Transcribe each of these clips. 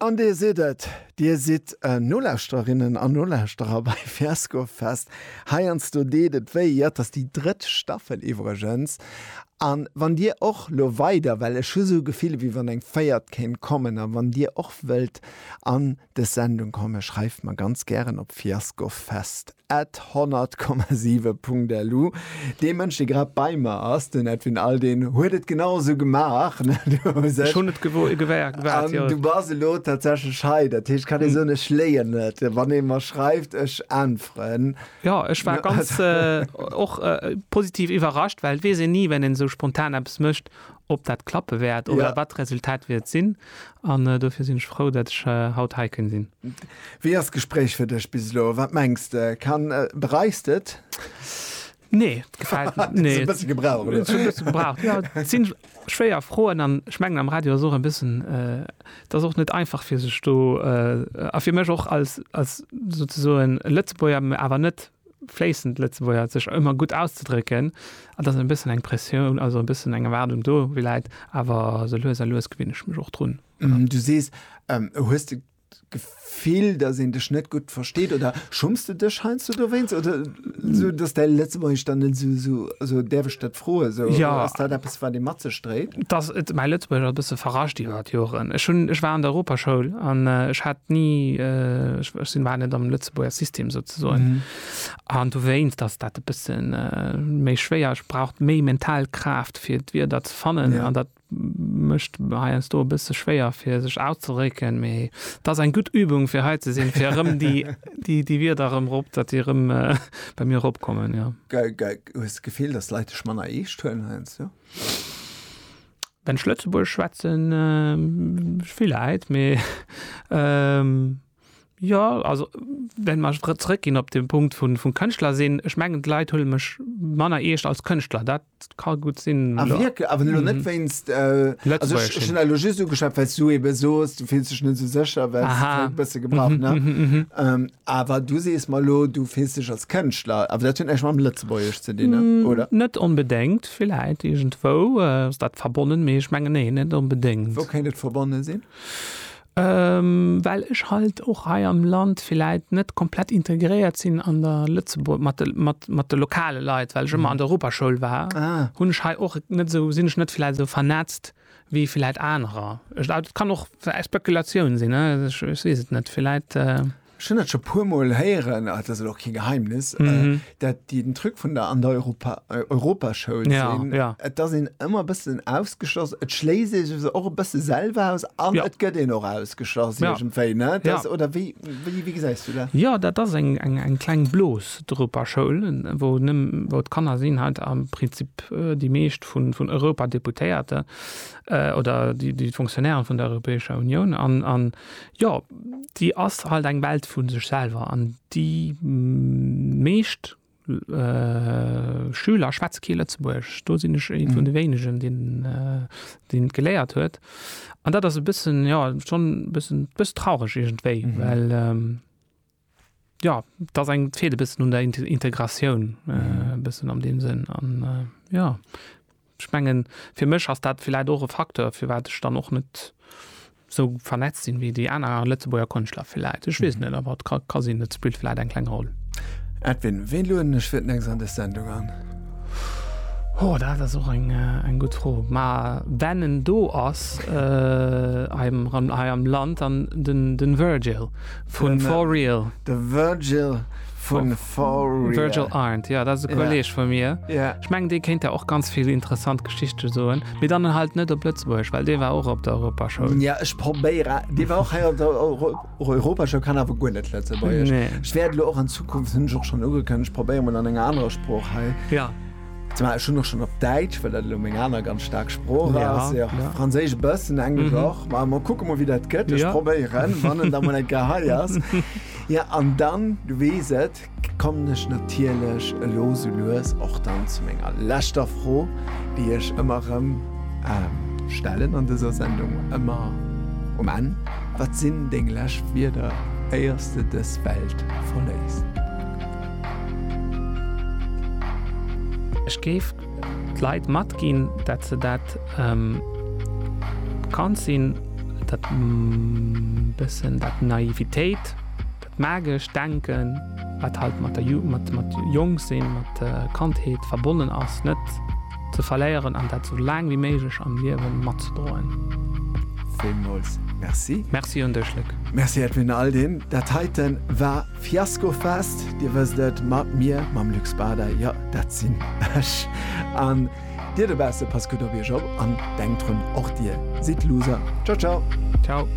An Dir sidd et, Dir sidd Nolauschterinnen an Nolauschterer bei Fiasco Fest. Heiansdo deet et wéi. Jo, et ass déi drëtt Staffel iwwregens. A wann Dir och elo weider, well ech hu sou d'Gefill, wéi wann eng véiert kéint kommen, a wann Dir och wëllt an dës Sendung kommen, schreift mer ganz gären op fiascofest. At 100,7 Punkterlu, dee Mënsch dee grad bei mer ass, den Edwin Aldin huet et genau esou gemaach. Ech hunn et gewaart, jo. An du bass elo tatsächlech hei, dat heescht kann ee soen, ech léien net, wann ee mer schreift, ech äntweren. Jo, ech war ganz och positiv iwwerrascht, well et weess een ni, wenn een esou spontan eppes mécht, ob dat klappe wäert oder wat d'Resultat wäert sinn. An dofir sinn ech frou, dat ech haut hei kënn sinn. Wéi ass d'Gespréich fir dech bis elo? Wat mengs de? Kann, bereichs de et? Nee, et gefält mir. Nee. Hues e bësse gebraucht, oder? Et huet e bësse gebraucht, jo. Et si schwéier Froen an ech mengen am Radio ass och e bëssen, et ass och net einfach fir sech do, a fir mech och als, als souzesoen Lëtzebuerger, mä awer net fléissend Lëtzebuerger, sech ëmmer gutt auszedrécken, an dass e bëssen eng Pressioun, also e bëssen eng Erwaardung do läit. Awer sou lues a lues gewinne ech mech och drun. Du sees, hues de d'Gefill, dass een dech net gutt versteet? Oder schumms de dech heiansdo dowéinst? Oder sou, dass däi Lëtzebuergesch dann net esou, also däerf ech dat froen, esou ass dat eppes, wat ee mat sech dréit? Dass et mäi Lëtzebuergesch ass e bësse verrascht iwwer d'Joren. Ech hunn, ech war an der Europaschoul an ech hat ni, ech sinn, war net am Lëtzebuerger System, ze soen mm. an du wéinst dass dat e bëssen äh, méi schwéier braucht méi mental Kraft fir d wie dat ze fannen an ja. dat mëcht heiers do bësse schwéier fir sech auszerécken méi dat eng gut Übung fir he ze sinn fir rëm die die die wir darum rop dat die rëm äh, bei mir opkommen ja ge, ge, gefiel das leite man e hun heinz ja wenn schlötzeburg schwätzen äh, viel leid me ähm, Jo, also well mer ech zréck ginn op de Punkt vun vum Kënschtler sinn, ech mengen d'Leit huele mech manner eescht als Kënschtler, dat ka gutt sinn. Ah wierklech? Awer elo net wéinst, also ech hunn elo just ugeschwat well s du ebe soos, du fills dech net esou sécher, well s de e bësse gebraucht, ne? Awer du sees mer elo, du fills dech als Kënschtler, awer dat huet näischt mam Lëtzebuergesch ze dinn, oder? Net onbedéngt, villäit iergendwou ass dat verbonnen, mee ech mengen, nee, net onbedéngt. Wou kéint et verbonne sinn? Well ech halt och hei am Land villäit net komplett integréiert sinn an der Lëtzebuerg, mat de, mat, mat de lokale Leit, well ech ëmmer an der Europaschoul war, hunn ech hei och net esou, sinn ech net villäit esou vernetzt wéi villäit anerer. Et kann och Spekulatioun sinn, ech weess et net, villäit. Ech hunn dat scho puermol héieren, ah, dat ass elo och kee Geheimnis, äh, mhm. dat déi den Truc vun der an der Europa, äh, Europaschoul ja, sinn. Ja. Et ass een ëmmer bëssen ausgeschloss. Et schléisst ee sech och e bësse selwer aus an ja. et gëtt een och ausgeschloss ja. irgendwéi, ne? Das, ja. Oder wéi, wéi, wéi gesäis du dat? Ja, dat ass eng, eng, eng kleng Blos d'Europaschoul, wou nëmm wou d'Kanner sinn halt am Prinzip äh, déi meescht vun, vun Europa Deputéierte äh, oder déi, déi Funktionären vun der Europäescher Union an, an Jo, déi ass halt eng Welt vu sech selwer an déi meescht Schüler schwätze kee Lëtzebuergesch. Do sinn ech ee vun de wéinegen, deen deen et geléiert huet. An dat ass e bëssen, jo, schonn e bëssen, e bëssen traureg iergendwéi, well. Jo, et ass eng, et feelt e bëssen un der Integratioun e bëssen an deem Sënn. An jo, ech mengen, fir mech ass dat villäit och e Facteur, firwat ech dann och net esou vernetzt sinn, wéi déi aner Lëtzebuerger Konschtler villäit. Ech weess net, awer et ka, ka sinn, et spillt villäit eng kleng Roll. Edwin, wien lueden ech fir d'nächst an dës Sendung an? Ho, dat ass och eng, eng gutt Fro. Ma wenn en do ass, hei am, hei am Land, dann den, den Virgil. Vun For Real. De Virgil vun For Real. Virgil Arndt, jo, dat ass e Kolleeg vu mir. Ech mengen, dee kéint der och ganz vill interessant Geschichte soen. Mee dann halt net op Lëtzebuerg, well dee war och op der Europaschoul. Jo, ech probéieren. Dee war och hei op der Europaschoul, kann awer guer net Lëtzebuergesch. Ech wäert elo och an Zukunft, hunn ech och schonn ugekënnegt, probéieren, mol an enger anerer Sprooch hei. Zumal ech hunn och schonn op Däitsch, well dat elo meng aner ganz staark Sprooch ass, jo, Franséisch e bëssen, Englesch och. Ma mer kucke mol, wéi dat gëtt. Ech probéieren, wann en da mol eng Kéier hei ass. Jo, an dann, du weess et, kommen ech natierlech elo sou lues och dann zu menger leschter Fro, déi ech ëmmer erëm stellen an dëser Sendung, ëmmer um Enn, Wat sinn deng lescht Wierder, éiers de dës Welt verléiss? Ech géif d'Leit matginn, datt se dat bekannt sinn, dat bëssen dat Naivitéit, dat magescht Denken, wat halt mat der mat jonk sinn, mat Kandheet verbonnen ass, net ze verléieren an dat sou laang wéi méiglech am Liewe matzedroen. Villmools Merci. Merci un dech, Luc. Merci Edwin Aldrin. Dat heiten war. Fiasco Fest, Dir wësst et, mat mir, mam Luc Bader, jo, dat sinn ech, an dir dobausse, passt gutt op iech op an denkt drun, och dir sidd Loser. Ciao ciao. Ciao.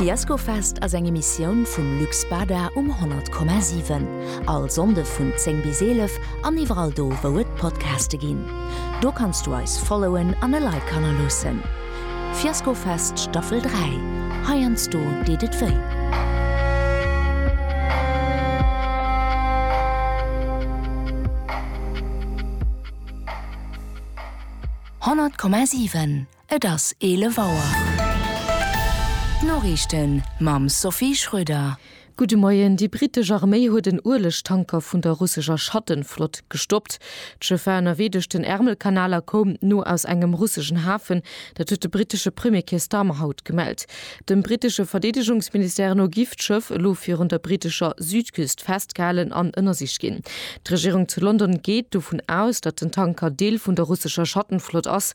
Fiasco Fest ass eng Emissioun vum Luc Bader um 100,7. All Sonnde vun 10 bis 11 an iwwerall do wou et Podcaste ginn. Do kanns du eis followen an e Like hannerloossen. Fiaskofest Staffel 3, heiansdo deet et wéi. Honnert Komma siwen, Et ass 11 Auer. D'Noriichten mam Sophie Schröder. Gudde Moien, Déi brittesch Arméi huet en Uelegtanker vun der russescher Schattenflott gestoppt. D'Schëff war ënnerwee duerch den Ärmelkanal a koum no aus engem russeschen Hafen. Dat huet de brittesche Premier Keir Starmer haut gemellt. Dem brittesche Verdeedegungsministère no giff d'Schëff elo virun der brittescher Südküst festgehalen an ënnersicht ginn. D'Regierung zu London geet dovun aus, datt den Tanker Deel vun der russescher Schattenflott ass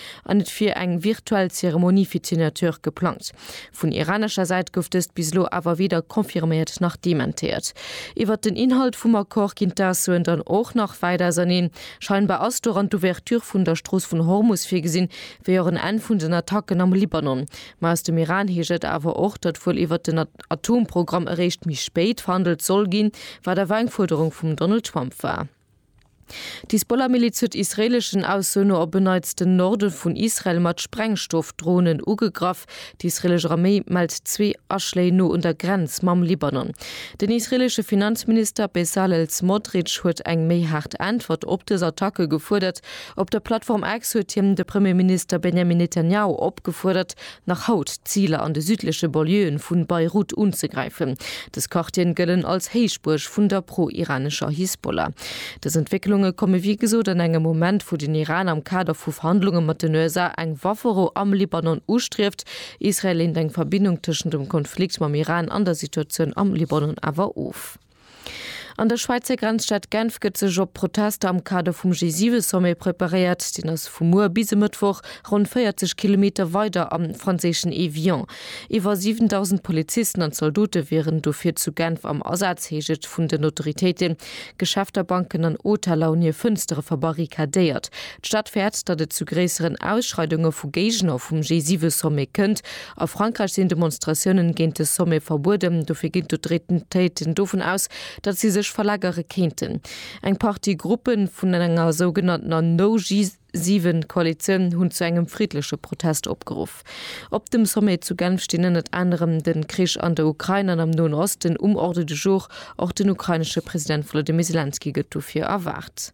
an et wier eng virtuell Zeremonie fir d'Signature geplangt. Vun iranescher Säit gouf dëst bis elo awer weder confirméiert nach dementéiert. Iwwert den Inhalt vum Accord ginn d'Aussoen dann och nach wäit auserneen. Scheinbar ass doran d'Ouverture vun der Strooss vun Hormus virgesinn, wéi och en Enn vun den Attacken am Libanon. Mä aus dem Iran heescht et awer och, datt wuel iwwert den Atomprogramm eréischt méi spéit verhandelt soll ginn, wat awer eng Fuerderung vum Donald Trump war. D'Hisbollah-Miliz huet israeeleschen Ausso no op e Neits den Norde vun Israel mat Sprengstoffdronen ugegraff. Déi israeelesch Arméi mellt zwee Aschléi no un der Grenz mam Libanon. Den israeeleschen Finanzminister Bezalel Smotrich huet eng méi haart Äntwert op dës Attacke gefuerdert. Op der Plattform X huet hien de Premierminister Benjamin Netanjahu opgefuerdert, nach haut d'Ziler an de südleche Banlieuen vu Beirut unzegräifen. Dës Quartieren gëllen als Héichbuerg vun der pro-iranescher Hisbollah. Dës Entwécklunge komme wéi gesot an engem Moment, wou den Iran am Kader vu Verhandlunge mat den USA eng Wafferou am Libanon ustrieft. Israel leent eng Verbindung tëschent dem Konflikt mam Iran an der Situatioun am Libanon awer of. An der Schwäizer Grenzstad Genf gëtt sech op Protester am Kader vum G7-Sommet preparéiert. Deen ass vu muer bis e Mëttwoch ronn 40 Kilometer weider am franséischen Évian. Iwwer 7.000 Polizisten an Zaldote wieren dofir zu Genf am Asaz, heescht et vun den Autoritéiten. Geschäfter, Banken an Hoteller hunn hir Fënstere verbarrikadéiert. D'Stad fäert, datt et zu gréisseren Ausschreidunge vu Géigner vum G7-Sommet kënnt. A Frankräich sinn Demonstratiounen géint de Sommet verbueden, dofir ginn d'Autoritéiten dovun aus, datt si sech verlagere kéinten. Eng Partie Gruppe vun enger sougenannter No-G7-Koalitioun hunn zu engem friddleche Protest opgeruff. Op dem Sommet zu Genf stinn ënnert anerem de Krich an der Ukrain an am Noen Osten um Ordre du jour. Och den ukrainesche President Wolodymyr Selenskyj gëtt dofir erwaart.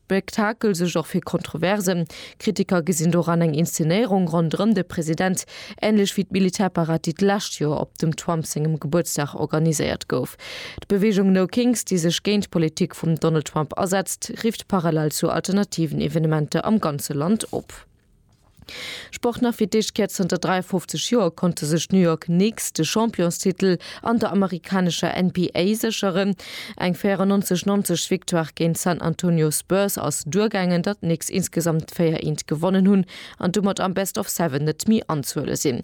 Spektakel suergt och fir Kontroversen. Kritiker gesinn doran eng Inszenéierung ronderëm de President, änlech wéi d'Militärparad, déi d'lescht Joer op dem Trump sengem Gebuertsdag organiséiert gouf. D'Beweegung No Kings, déi sech géint d'Politik vum Donald Trump asetzt, rifft parallel zu alternativen Evenementer am ganze Land op. Sport nach fir d'éischt Kéier zënter 53 Joer konnte sech d'New York Knicks de Championstitel an der amerikanescher NBA sécheren. Eng 94, 90 Victoire géint d'San Antonio Spurs ass duergaangen, datt d'Knicks insgesamt 4 Eent gewonnen hunn an domat am Best of Seven net méi anzehuele sinn.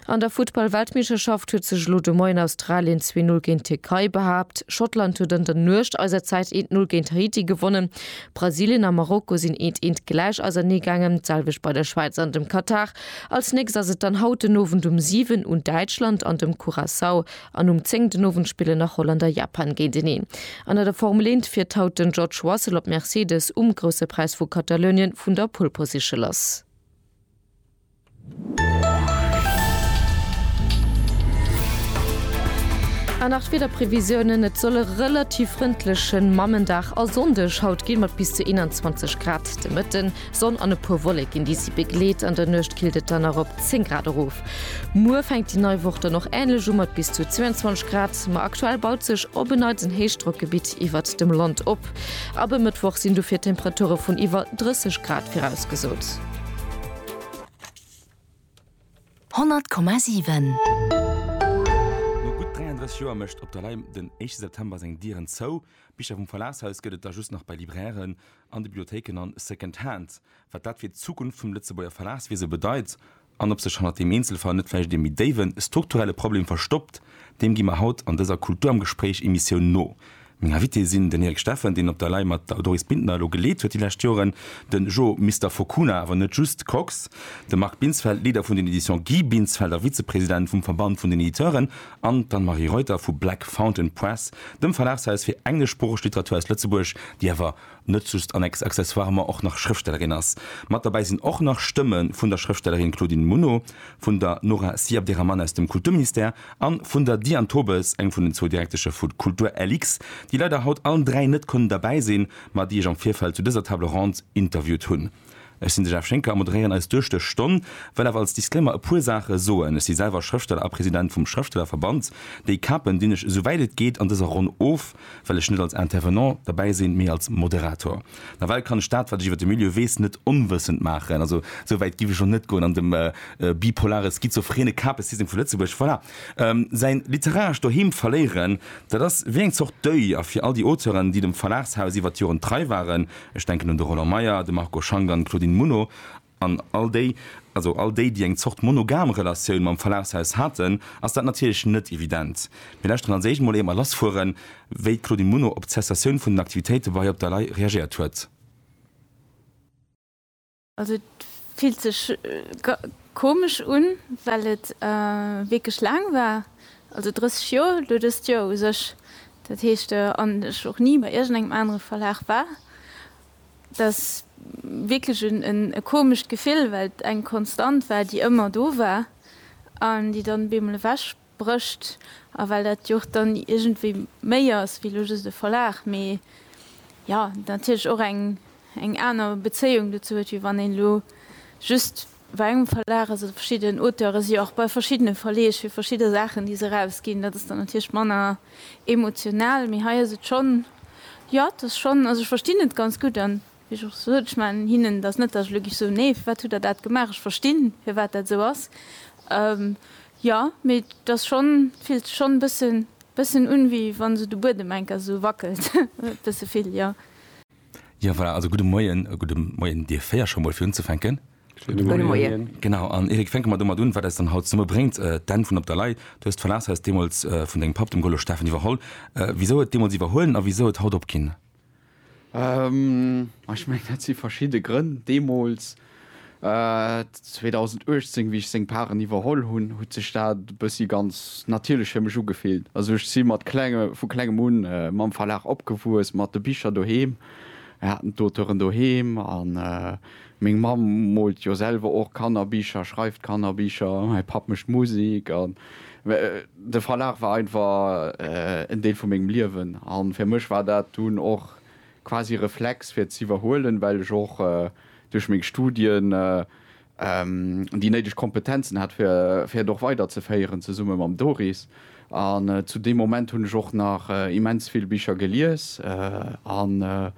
An der Futtball-Weltmeeschterschaft huet sech elo de Moien Australien zwee Null géint d'Tierkei behaapt. Schottland huet an der Nuecht eiser Zäit eent Null géint Haiti gewonnen. Brasilien a Marokko sinn eent eent gläich ausernee gaangen, d'selwecht bei der Schwäiz an dem Katar. Als nächst ass et dann haut den Owend um 7 un Däitschland an dem Curaçao an um 10 den Owend spillen nach Holland a Japan géinteneen. An an der Formel eent fiert haut den George Russell op Mercedes um Grousse Präis vu Katalounien vun der Pole Position lass. An nach d'Wiederprevisiounen, Et soll e relativ frëndleche Mammendag a Sonndeg haut ginn, mat bis zu 21 Grad de Mëtten, Sonn an e puer Wolleken, déi si begleet. An der Nuecht killt et dann nach op 10 Grad erof. Muer fänkt déi nei Woch dann och änlech u mat bis zu 22 Grad, ma aktuell baut sech op en Neits en Héichdrockgebitt iwwert dem Land op. Ab e Mëttwoch sinn dofir Temperature vun iwwer 30 Grad virausgesot. Honnert Komma siwen. No gutt 33 Joer mécht Op der Lay den éischte September seng Dieren zou. Bicher vum Verlagshaus gëtt et der just nach bei Librairen, an de Bibliothéiken an Second Hand. Wat dat fir d'Zukunft vum Lëtzebuerger Verlagswiese bedeit an ob sech hannert deem Eenzelfall net vläicht ee méi déiwe strukturelle Problem verstoppt, deem gi mer haut an dëser Kultur am Gespréich Emissioun no. Meng Invitée sinn den Erik Steffen, deen op der Lay mat der Doris Bintner elo geleet huet déi lescht Joren, de Jo Mister Fokuna, awer net just, Kox, de Marc Binsfeld, Leader vun den Editions Guy Binsfeld a Vizepresident vum Verband vun den Editeuren, an d'Anne-Marie Reuter vu Black Fountain Press, dem Verlagshaus fir engleschsproocheg Literatur aus Lëtzebuerg, déi awer net just an ex accessoirement och nach Schrëftstellerin ass. Mat derbäi sinn och nach Stëmme vun der Schrëftstellerin Claudine Muno, vun der Nora Siabderrahmane aus dem Kulturministère a vun der Diane Tobes, eng vun den zwou Direktesche vu Kultur-LX, déi leider haut allen dräi net konnen derbäi sinn, ma déi ech am Virfeld zu dëser Table ronde interviewt hunn. Ech sinn de Jeff Schinker a moderéieren eis duerch dës Stonn. Wëll awer als Disclaimer e puer Saache soen. Ech si selwer Schrëftsteller a President vum Schrëftstellerverband. Déi Kapen dinn ech esou wäit et geet an dëser Ronn of, well ech net als Intervenant derbäi sinn, mee als Moderator. Nawell kann ech dat, wat ech iwwer de Milieu weess, net onwëssend maachen. Also esou wäit giff ech elo net goen an dem bipolare schizophrene Kapesystem vu Lëtzebuerg, voilà, säin literarescht Doheem verléieren. Dat ass wéi eng Zort Deuil a fir all déi Auteuren, déi dem Verlagshaus iwwer d'Joren trei waren, Ech denken un de Roland Meyer, de Marco Schank an d'Claudine Muno an all déi, also all déi, déi eng Zort monogam Relatioun mam Verlagshaus haten, ass dat natierlech net evident. Mir lauschteren als éischt mol éier lassfueren, wéi d'Claudine Muno op d'Cessatioun vun den Aktivitéite bei Op der Lay reagéiert huet. Also et fillt sech komesch un, well et wierklech laang war, also 30 Joer, elo dëst Joer u sech, dat heescht an ech och ni bei iergendengem anere Verlag war. Et ass wierklech e komescht Gefill, well et eng Konstant war, déi ëmmer do war an déi dann op eemol ewech Brécht, a well dat jo och dann iergendwéi méi ass wéi elo just e Verlag, mee jo natierlech och eng eng aner Bezéiung dozou huet, wéi wann een elo just bei engem Verlag ass oder verschidden Auteure si jo och bei verschiddene Verleeg fir verschidde Saachen, déi se erausginn. Dat ass dann natierlech manner emotional, mee hei ass et schonn, jo et ass schonn, also ech verstinn et ganz gutt an Wéi ech och sot, ech man hinnen, et ass net, datt ech elo giff soen, nee, firwat hutt Der dat gemaach, ech verstinn, firwat dat esou ass. Jo, mee et ass schonn, et fillt sech schonn e bëssen, bëssen un, wéi wa sou de Buedem enker esou wackelt, e bësse vill, jo. Jo, voilà, also gudde Moien. Gudde Moien Dir véier, scho mol fir unzefänken. Gudde Moien. Genau, an Eric, fänke mer domat un, wat eis dann haut zesummen bréngt, d'Enn vun Op der Lay. Du hues d'Verlagshaus deemools vun dengem Papp, dem Golo Steffen, iwwerholl. Wisou et deemools iwwerhuelen a wisou et haut opginn Ech mengen, dat si verschidde Grënn. Deemools, 2018, wéi ech seng Paren iwwerholl hunn, huet sech dat e bëssi ganz natierlech fir mech ugefillt. Also ech si mat klenge, vu klengem un mam Verlag opgewuess, mat de Bicher doheem. Mir haten d'Auteuren doheem a Meng Mamm moolt jo selwer och Kannerbicher, schreift Kannerbicher, mäi Papp mécht Musek. An de Verlag war einfach en Deel vu mengem Liewen. A fir mech war dat dunn och quasi e Reflex, fir et z'iwwerhuelen, well ech och duerch meng Studien déi néideg Kompetenzen hat, fir et och weiderzeféieren, zesumme mam Doris. An zu deem Moment hunn ech och nach immens vill Bicher gelies an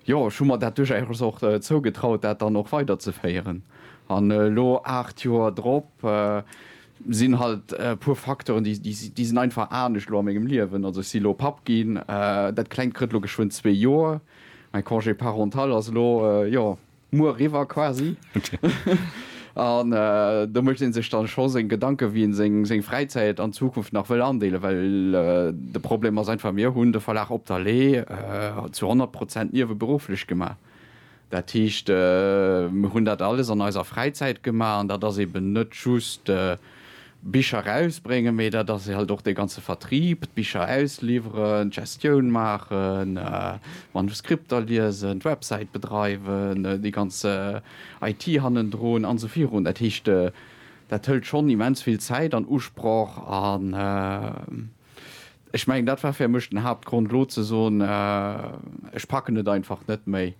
Jo, ech hu mer dat duerchaus och zougetraut, dat dann och weiderzeféieren. An elo, aacht Joer drop, sinn halt e puer Facteuren, déi, déi sinn einfach anescht elo a mengem Liewen. Also ech si elo Papp ginn, dat Klengt kritt elo geschwënn zwee Joer, mäi Congé parental ass elo, jo, muer eriwwer quasi. An do mécht ee sech dann scho seng Gedanken, wéi een seng Fräizäit an Zukunft nach wëll andeelen, well de Problem ass einfach, mir hunn de Verlag Op der Lee zu 100 Prozent nieweberufflech gemaach. Dat heescht, mir hunn dat alles an eiser Fräizäit gemaach an dat ass eben net just Bicher erausbréngen, mee dat ass halt och dee ganze Vertrieb, d'Bicher ausliwweren, d'Gestioun maachen, d'Manuskripter liesen, d'Websäit bedreiwen, déi ganz IT hannendrun an esou virun. Dat heescht, dat hëlt schonn immens vill Zäit an Usproch an ech mengen, dat war fir mech den Haaptgrond elo ze soen, ech packen et einfach net méi.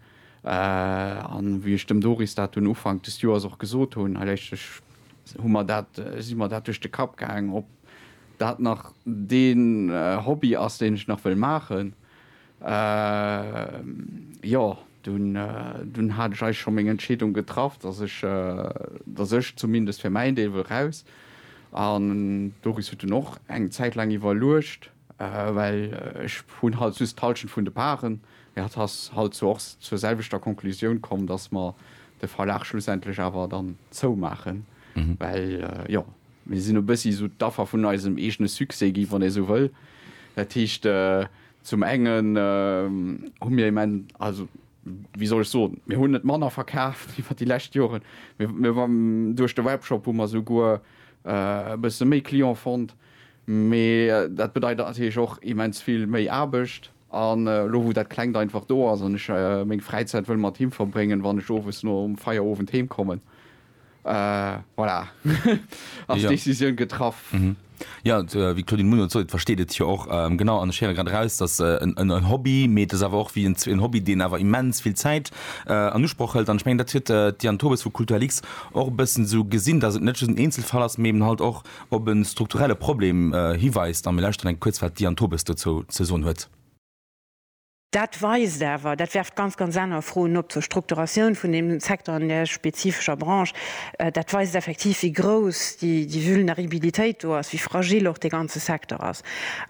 An wéi ech dem Doris dat dunn Ufank des Joers och gesot hunn, hei léisst ech, Hu mer dat, si mer dat duerch de Kapp gaang, ob dat nach dee Hobby ass, deen ech nach wëll maachen. Jo, dunn hat ech eis scho meng Entscheedung getraff, dass ech, dass ech zumindest fir mäin Deel wëll raus. An d'Doris huet dunn och eng Zäit laang iwwerluecht. Well ech hunn halt just d'Halschent vun de Paren. Mee hatt ass halt zwar och zur selwechter Konklusioun komm, dass mer de Verlag schlussendlech awer dann zoumaachen. Well jo, mir sinn e bëssi esou d'Affer vun eisem eegene Succès gi, wann ee esou wëll. Dat heescht, zum engen hu mir im End, also wéi soll ech soen, mir hunn net manner verkaaft iwwer déi lescht Joren. Duerch de Webshop hu mer souguer e bësse méi Client fonnt. Mee dat bedeit natierlech och immens vill méi Aarbecht. An elo wou dat Klengt einfach do ass an ech meng Fräizäit wëll mat him verbréngen, wann ech owes nom Feierowend heem kommen, voilà, ass d'Decisioun getraff. Jo, wéi d'Claudine Muno et sot, et versteet et jo och. Genau, an ech héiere grad eraus, dass en Hobby, mee et ass awer och wéi en Hobby, deen awer immens vill Zäit an Usproch hëlt. An ech mengen, dat huet d'Diane Tobes vu Kulturlix och e bëssen esou gesinn, dass et net just en Eenzelfall ass, mee eben halt och op e strukturelle Problem hiweist a mir lauschteren enk kuerz, wat d'Diane Tobes dozou ze soen huet. Dat weist awer, dat werft ganz, ganz aner Froen op zur Strukturatioun vun deem Secteur an där spezifescher Branche, dat weist effektiv, wéi grouss déi Vulneribilitéit do ass, wéi fragil och dee ganze Secteur ass.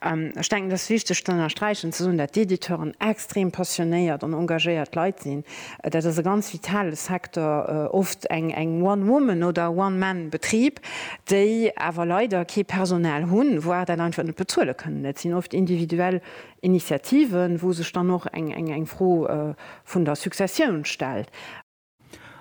Ech denken, et ass wichteg ze ënnersträichen, ze soen, dat d'Editeuren extrem passionéiert an engagéiert Leit sinn, Dat ass e ganz vitale Secteur, oft eng One Woman oder One Man Betrib, déi awer leider kee Personal hunn, voire dat einfach net bezuele kënnen. Et sinn oft individuell Initiativen, wou sech dann och eng Fro vun der Successioun stellt.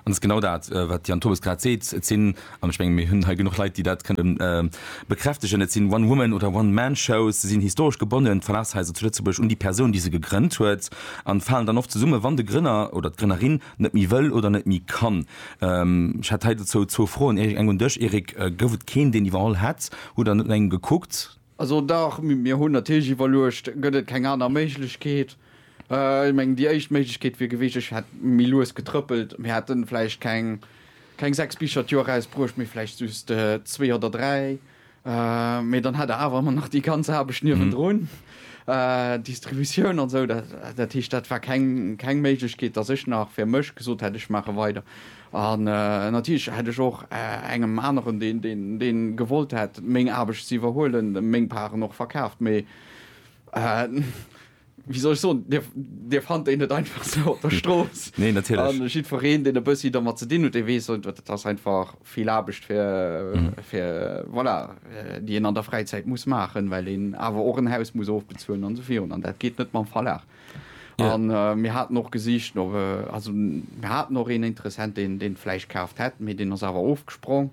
An et ass genau dat, wat d'Diane Tobes grad seet, et sinn An ech mengen, mir hunn hei genuch Leit, déi dat kënnen bekräftegen. Et sinn One-Woman oder One-Man-Shows. Se sinn historesch gebonnen, d'Verlagshaiser zu Lëtzebuerg, un déi Persoun, déi se gegrënnt huet, an falen dann oft zesummen, wann de Grënner oder d'Grënnerin net méi wëll oder net méi kann. Ech hätt hei dozou zwou Froen, Erik. Eng un dech, Erik, Gouf et keen, deen iwwerholl hätt? Hutt Der net no engem gekuckt? Also dach, mir hunn natierlech iwwerluecht, gëtt et keng aner Méiglechkeet? Ech mengen, déi éischt Méiglechkeet wier gewiescht, ech hätt méi lues getrëppelt, mir hätte vläicht keng sechs Bicher d'Joer erausbruecht, mee vläicht just zwee oder dräi. Mee dann hätt Der awer ëmmer nach déi ganz Aarbecht niewendrun, Distributioun an esou. Dat heescht, dat war keng Méiglechkeet, datt ech nach fir mech gesot hätt, ech maache weider. An natierlech hätt ech och engem aneren, dee gewollt hätt, meng Aarbecht ze iwwerhuelen, meng Paren och verkaaft. Mee wéi soll ech soen, Dir fannt déi net einfach sou op der Strooss. A jiddwereen, deen e bëssi domat ze dinn huet, dee weess, et ass einfach vill Aarbecht, voilà, déi een an der Fräizäit muss maachen, well een awer och en Haus muss ofbezuelen an esou virun. An dat geet net mam Verlag. Yeah. An äh, mir haten och gesicht no äh, also mir haten och een Interessent, den den Fleisch kaaft hätt, mee den ass awer ofgesprong.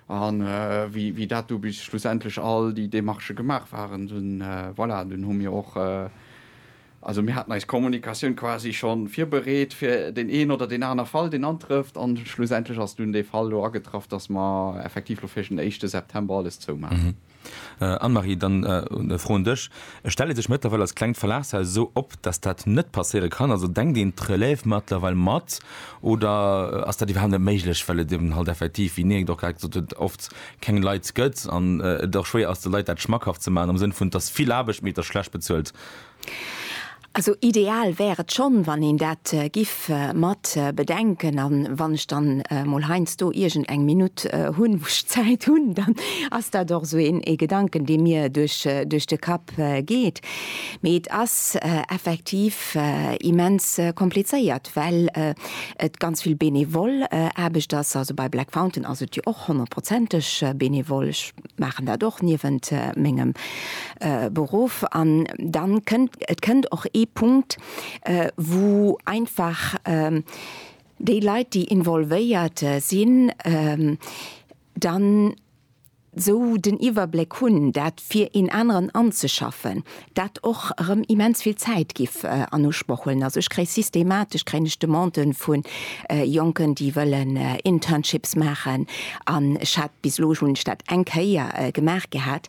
An äh, wie, wie dat du bis schlussendlech all die Demarche gemacht waren, dann äh, voilà, dann hu mir och äh, also mir hatten eis Kommunikatioun quasi schon virbereet fir den een oder den aner Fall den antrëfft an schlussendlech ass dun de Fall lo agetraff, dass ma effektiv lo fir den 1. September alles zou machen. Mhm. Anne-Marie, dann e Fro un dech. Et stellt ee sech mëttlerweil als klengt Verlagshaus esou op, datt dat net passéiere kann. Also denkt een d'Relève mëttlerweil mat oder ass dat iwwerhaapt net méiglech, well et eben halt effektiv, wéi Niek et och grad gesot huet, oft keng Leit gëtt an et och schwéier ass de Leit dat schmackhaft ze maachen am Sënn vun, et ass vill Aarbecht, mee et ass schlecht bezuelt? Also ideal wär et schonn, wann een dat giff mat bedenken. An wann ech dann mol heiansdo iergend eng Minutt hunn, wou ech Zäit hunn, dann ass dat och esou een Gedanken, dee mir duerch de Kapp geet. Mee et ass effektiv immens komplizéiert, well et ganz vill benevol Aarbecht ass. Also bei Black Fountain ass et jo och honnertprozenteg benevol. Maachen dat och niewent mengem Beruff. An dann kënnt, et kënnt och ee Punkt, wou einfach déi Leit, déi involvéiert sinn, dann esou den Iwwerbléck hunn, dat fir een aneren anzeschaffen. dat och erëm immens vill Zäit giff an Usproch huelen. Also ech kréie systematesch kréien ech Demanden vu Jonken, déi wëllen Internships maachen an ech hat, bis elo hunn ech dat eng Kéier gemaach gehat,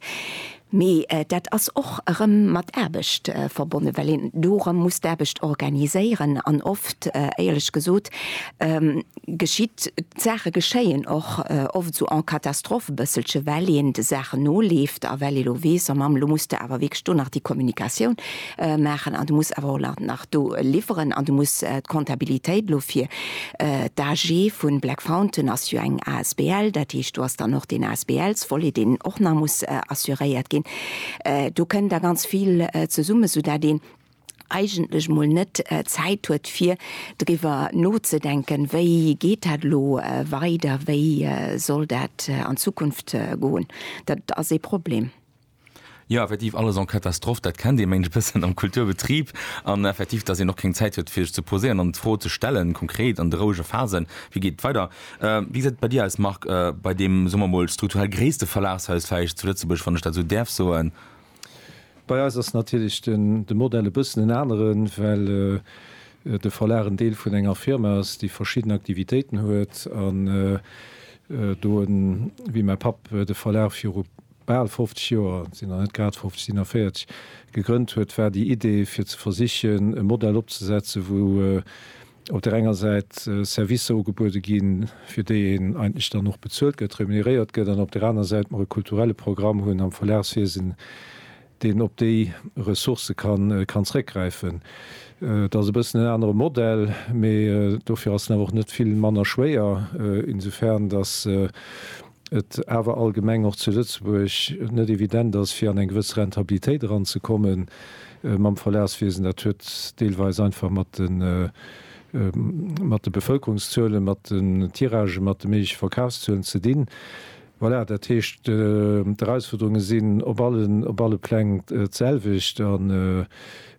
mee dat ass och erëm mat Aarbecht verbonnen, well een do erëm muss d'Aarbecht organiséieren an oft, éierlech gesot, geschitt, d'Saache geschéien och oft esou en catastrophe e bësselche well een de Saachen noleeft a well ee lo weess, oh Mamm, elo muss de awer wierklech do nach déi Kommunikatioun maachen an du muss awer och nach do liwweren an du muss d'Kontabilitéit elo fir d'AG vu Black Fountain ass jo eng asbl, dat heescht do ass dann och deen ASBL-Volet deen och nach muss assuréiert ginn, do kënn da ganz vill zesummen, soudatt een eigentlech mol net Zäit huet fir driwwer nozedenken, wéi geet dat elo weider, wéi soll dat an Zukunft goen. Dat ass ee Problem. Jo, effektiv, alles en catastrophe, dat kennt ee mengt e bëssen am Kulturbetrib. An effektiv, dass een och keng Zäit huet fir sech ze poséieren an d'Fro ze stellen, konkret an de rouege Phasen, wéi geet et weider. Wéi gesäit et bei dir aus Marc, bei deem, soe mer mol, strukturell gréisste Verlagshaus vläicht zu Lëtzebuerg, wann ech dat esou däerf soen? Bei eis ass natierlech de Modell e bëssen en aneren, well de Verlag en Deel vun enger Firma ass, déi verschidden Aktivitéiten huet an do en, wéi mäi Papp de Verlag viru bal 50 Joer, sinn nach net grad 50, sinn nach 40, gegrënnt huet, war déi Idee fir ze versichen e Modell opzesetzen, wou op där enger Säit Servicer ugebuede ginn, fir déi een eigentlech dann och bezuelt gëtt, remuneréiert gëtt, an op där aner Säit mer e kulturelle Programm hunn am Verlagswiesen, deen op déi Ressourcë kann zréckgräifen. Dat ass e bëssen en anere Modell, mee dofir ass en awer och net vill manner schwéier, insofern datt et awer allgemeng och zu Lëtzebuerg net evident ass, fir an eng gewëss Rentabilitéit eranzekommen mam Verlagswiesen. Dat huet deelweis einfach mat de Bevëlkerungszuelen, mat den Tiragen, mat de méigleche Verkafszuelen ze dinn. Voilà, dat heescht, d'Erausfuerderunge sinn op alle Pläng d'selwecht.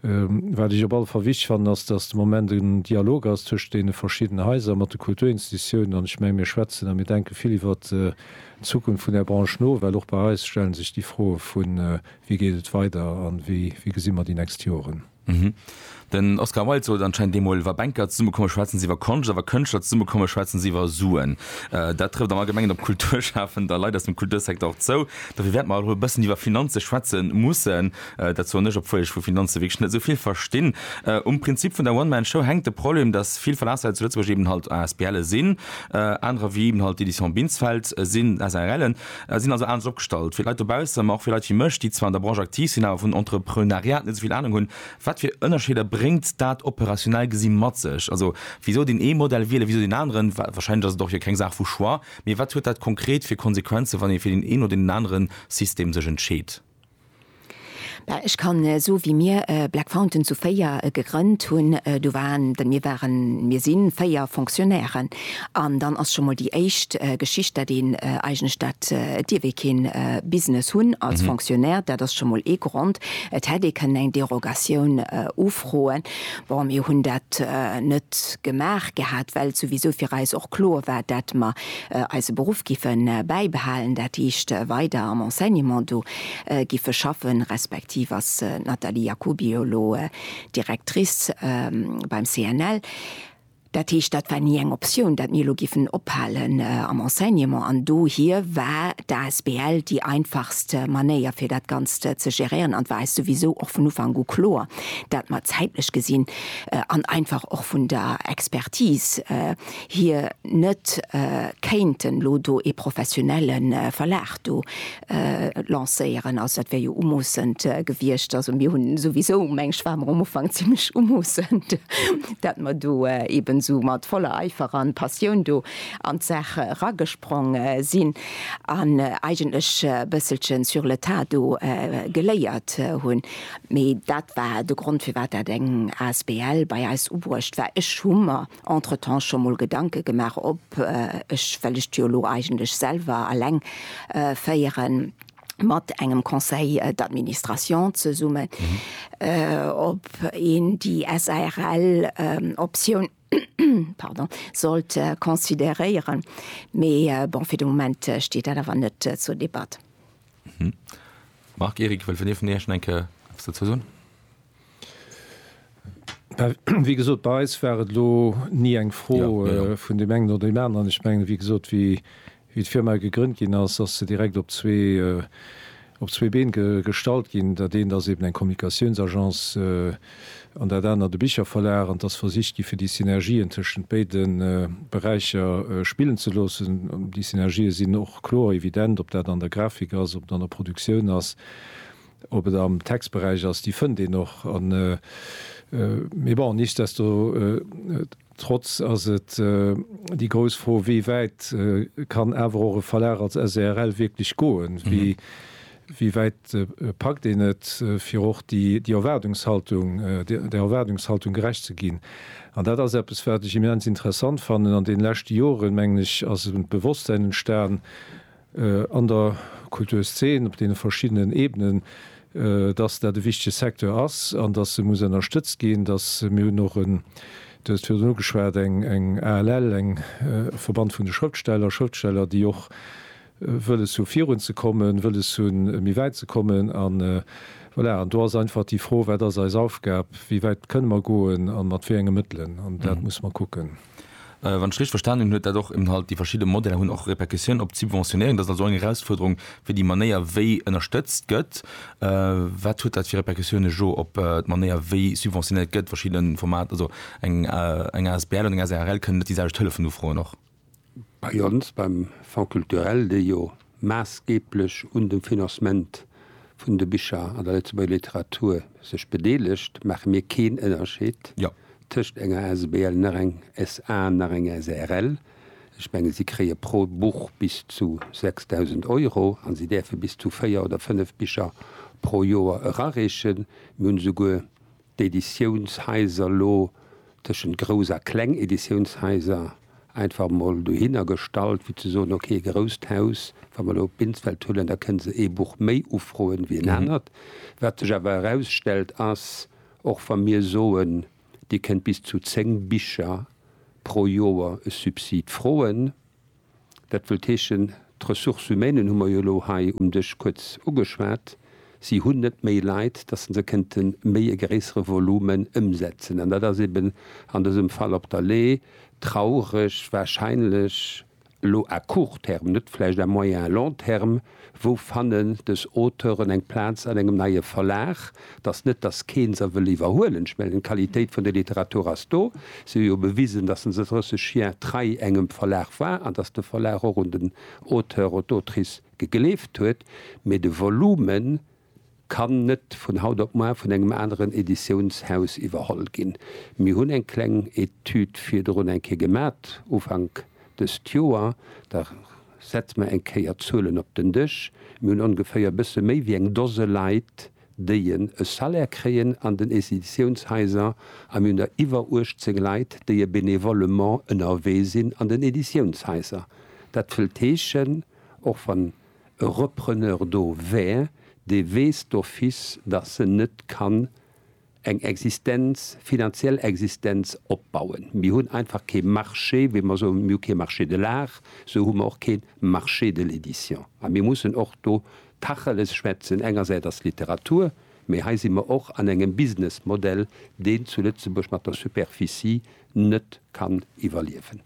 Wat ech op alle Fall wichteg fannen, ass, dass de Moment en Dialog ass tëscht deene verschiddenen Haiser, mat de Kulturinstitutiounen. An ech menge mir schwätzen a mir denke vill iwwert d'Zukunft vun där Branche no, well och bei eis stelle sech déi Froe vu wéi geet et weider a wéi gesi mer déi nächst Joren. Den Oscar Wilde sot anscheinend deemol, Wa Banker zesummekomme schwätzen se iwwer Konscht a wa Kënschtler zesummekomme schwätzen se iwwer Suen. Dat trëfft am Allgemengen op Kulturschafend a Leit aus dem Kultursecteur och zou. Dofir wäerte mer erëm e bëssen iwwer Finanze schwätze mussen. Dat soen ech, obwuel ech vu Finanze wierklech net esou vill verstinn. Um Prinzip vun der One-Man-Show hänkt de Problem, dass vill Verlagshaise zu Lëtzebuerg eben halt ASBLe sinn, anerer wéi eben halt d'Éditions Binsfeld sinn SARLen, sinn also anescht opgestallt. Fir d'Leit dobausse, ma och fir Leit wéi mech, déi zwar an der Branche aktiv sinn, awer vun Entrepreneuriat net esou vill Anung hunn, Wat fir Ënnerscheeder bréngt dat operationell gesi mat sech? Also wisou deen ee Modell wielen, wisou deen aneren? Wahrscheinlech ass et och jo keng Saach vu Choix, mee wat huet dat konkret fir Konsequenzen, wann ee fir deen een oder deen anere System sech entscheet? Ech kann so wéi mir Black Fountain zu véier gegrënnt hunn, do waren, mir waren, mir si véier Fonctionnairen an dann ass scho mol déi éischt Geschicht, dat een eigentlech dat, et dierf ee kee Business hunn als Fonctionnaire, dat ass scho mol ee Grond. Et hätt ee kënnen eng Derogatioun ufroen. Bon, mir hunn dat net gemaach gehat, well souwisou fir eis och kloer war, dat mer eise Beruff giffe bäibehalen, dat heescht weider am Enseignement do giffe schaffen, respektiv ass d'Nathalie Jacoby jo elo Directrice beim CNL. Dat heescht, dat war ni eng Optioun, dat mir elo giffen ophalen am Enseignement. An dohier war d'asbl déi einfachst Manéier, fir dat Ganzt ze geréieren. An et war eis souwisou och vun Ufank u kloer, dat mer zäitlech gesinn an einfach och vun der Expertise, hir net kéinten elo do ee professionelle Verlag do lancéieren. Also dat wär jo umoossend gewiescht. Also mir hunn souwisou, meng ech, ware mer um Ufank zimlech umoossend, dat mer do eeben esou mat voller Eifer an Passioun do an d'Saach eragesprong sinn an eigentlech e bësselchen sur le tas do geléiert hunn. Mee dat war de Grond, firwat dat eng asbl bei eis ubruecht war. Ech hu mer Entretemps scho mol Gedanke gemaach ob ech, well ech jo lo eigentlech selwer alleng féieren, mat engem Conseil d'administration zesummen, ob een déi SARL Optioun, pardon, sollt consideréieren, mee bon, fir de Moment steet dat awer net zur Debatt. Marc, Eric, wëll vun Dir vun Iech nach eng Kéier eppes dozou soen? Wéi gesot, bei eis war et elo ni eng Fro vun deem engen oder deem aneren. Ech mengen, wéi gesot, wéi d'Firma gegrënnt ginn ass, ass se direkt op zwee Been gestallt ginn. Dat eent ass eben eng Kommunikatiounsagence an dat anert e Bicherverlag. An et ass versicht gi fir déi Synergien tëschent béide Beräicher spillen ze loossen. Déi Synergië sinn och kloer, evident, ob dat an der Grafik ass, ob et an der Produktioun ass. Ob et am Textberäich ass, déi fënnt een och. Mee bon, nichtsdestotrotz ass et déi grouss Fro, wéi wäit kann awer och e Verlag als SRL wierklech goen? Wéi wäit packt een et, fir och déi Erwaardungshaltung, där Erwaardungshaltung gerecht ze ginn? An dat ass eppes, wat ech immens interessant fannen. An deene leschte Joren, mengen ech, ass e Bewosstsein entstan, an der Kulturszen op deene verschiddenen Ebenen, dass dat e wichtege Secteur ass an dass e muss ënnerstëtzt ginn. Dass, mir hunn och en, Du hues et virdrun ugeschwat, eng ALL, eng Verband vun de Schrëftsteller, Schrëftsteller, déi och wëlles hu virun ze kommen, wëlles hunn méi wäit ze kommen. An, voilà, an do ass einfach déi Fro, Wat ass eis Aufgab? Wéi wäit kënne mer goen a mat wéi enge Mëttelen? An dat musse mer kucken. wann ech richteg verstanen hunn, huet dat och eben halt, déi verschidde Modeller hunn och Répercussioun op d'Subventionéieren. Dat ass also eng Erausfuerderung fir déi Manéier wéi ënnerstëtzt gëtt. Wat huet dat fir Répercussioune jo op d'Manéier wéi subventionéiert gëtt, verschidde Formater, also eng asbl an eng asrl kënnen net déi selwecht Hëllefen ufroen och? Bei ons, beim Fonds culturel, dee jo maassgeeblech un dem Financement vun de Bicher an der Lëtzebuerger Literatur sech bedeelegt, maache mir keen Ënnerscheed tëscht enger Asbl nach eng SA nach eng SARL. Ech menge si kréie pro Buch bis zu 6.000 Euro a si däerfe bis zu véier oder fënnef Bicher pro Joer erareechen. Mir hunn esouguer d'Editiounshaiser lo tëschent grouss a kleng Editiounshaiser einfach emol dohinner gestallt, fir ze soen, ok, e grousst Haus, wa mer elo Binsfeld huelen, da kënne se ee Buch méi ufroen ewéi en anert. Wat sech awer erausstellt, ass, och wa mir soen, Dir kënnt bis zu zéng Bicher pro Joer e Subsid froen, Dat wëllt heeschen, d'Ressources humaines hu mer jo elo hei um Dësch kuerz ugeschwat, si hunn net méi Leit, dass se se kënnte méi e gréissere Volume ëmsetzen. An dat ass eeben an dësem Fall op der Lee traureg, wahrscheinlech elo à court terme, net vläicht à moyen, long terme, Wou fannen dës Auteuren eng Plaz an engem neie Verlag? Et ass net, datt keen se wëll iwwerhuelen. Ech mengen, d'Qualitéit vun der Literatur ass do. Si hu jo bewisen, datt se 30 Jier trei engem Verlag war an datt de Verlag och un den Auteur, un d'Autrice gegleeft huet. Mee de Volumen. Kann net vun haut op muar vun engem aneren Editiounshaus iwwerholl ginn. Mir hunn eng kleng Etüd virdrun eng Kéier gemat, Ufank dëst Joer. Da setze mer eng Kéier d'Zuelen op den Dësch. Mir hunn ongeféier e bësse méi wéi eng Dose Leit, déi en e Salaire kréien an den Editiounshaiser, a mir hunn der iwwer 18 Leit, déi e bénévolement ënnerwee sinn an den Editiounshaiser. Dat wëllt heeschen, och wann. e Repreneur do wär, dee weess d'office, dass en net kann eng Existenz, finanziell Existenz opbauen. Mir hunn einfach kee Marché, wéi mer soen, mir hu kee Marché de l'art, esou hu mer och kee Marché de l'édition. A mir mussen och do Tacheles schwätzen, engersäits ass d'Literatur, mee hei si mer och an engem Businessmodell, deen zu Lëtzebuerg mat der Superficie net kann iwwerliewen.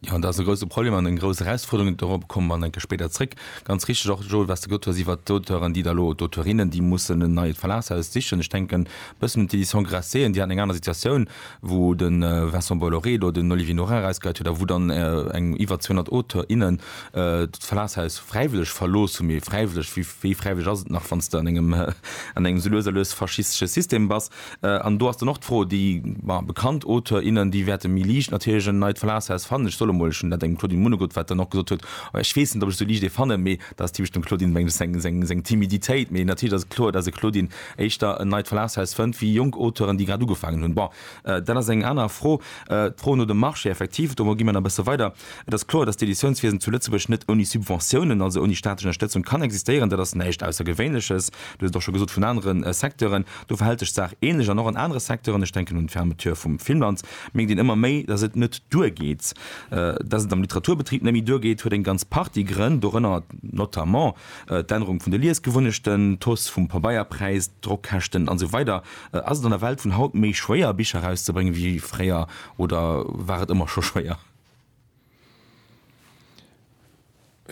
Jo, dat ass e grouse Problem an eng grouss Erausfuerderung. Dorobber komme mer enke spéider zréck. Ganz richteg och, Joel, wat s de gesot hues iwwert d'Auteuren, déi da elo, oder d'Auteurinnen, déi mussen en neit Verlagshaus sichen. Ech denken e bëssen un d'Éditions Grasset, déi haten eng aner Situatioun, wou de Vincent Bolloré elo den Olivier Norin erausgeheit huet a wou dann eng iwwer 200 Auteurs, innen d'Verlagshaus fräiwëlleg verlooss hunn. Mee fräiwëlleg, wéi fräiwëlleg ass et nach, wann s de an engem, an engem esou lues a lues faschistesche System bass? An do ass dann och d'Fro, déi bekannt Auteur, innen, déi wäerte méi liicht natierlech en neit Verlagshaus fannen. Ech soll emol, ech hunn dat engem Claudine Munegut, wat dann och gesot huet, ech weess net, ob ech sou liicht ee fannen, mee dat ass typesch dem Claudine meng seng Timiditéit, mee natierlech ass et kloer, dass e Claudine éischter en neit Verlagshaus fënnt wéi jonk Auteuren, déi grad ugefaangen hunn. Bon, dat ass eng aner Fro. D'Fro no dem Marché, effektiv, do gi mir nach e bësse weider. Et ass kloer, dass d'Editiounswiesen zu Lëtzebuerg net ouni Subventiounen, also ouni staatlech Ënnerstëtzung, kann existéieren. Dat ass näischt Aussergewéinleches, du hues et och scho gesot, vun anere Secteuren. Do verhält sech d'Saach ähnlech an och an anere Secteuren, ech denken un d'Fermeture vum Filmland, mierkt een ëmmer méi, datt et net duergeet. Datt et am Literaturbetrib net méi duergeet, huet eng ganz Partie Grënn, dorënner notamment d'Ännerung vun de Liesgewunnechten, d'Hausse vum Pabeierpräis, d'Drockkäschten, an esou weider Ass et an der Welt vun haut méi schwéier, Bicher erauszebréngen, wéi fréier, oder war et ëmmer scho schwéier?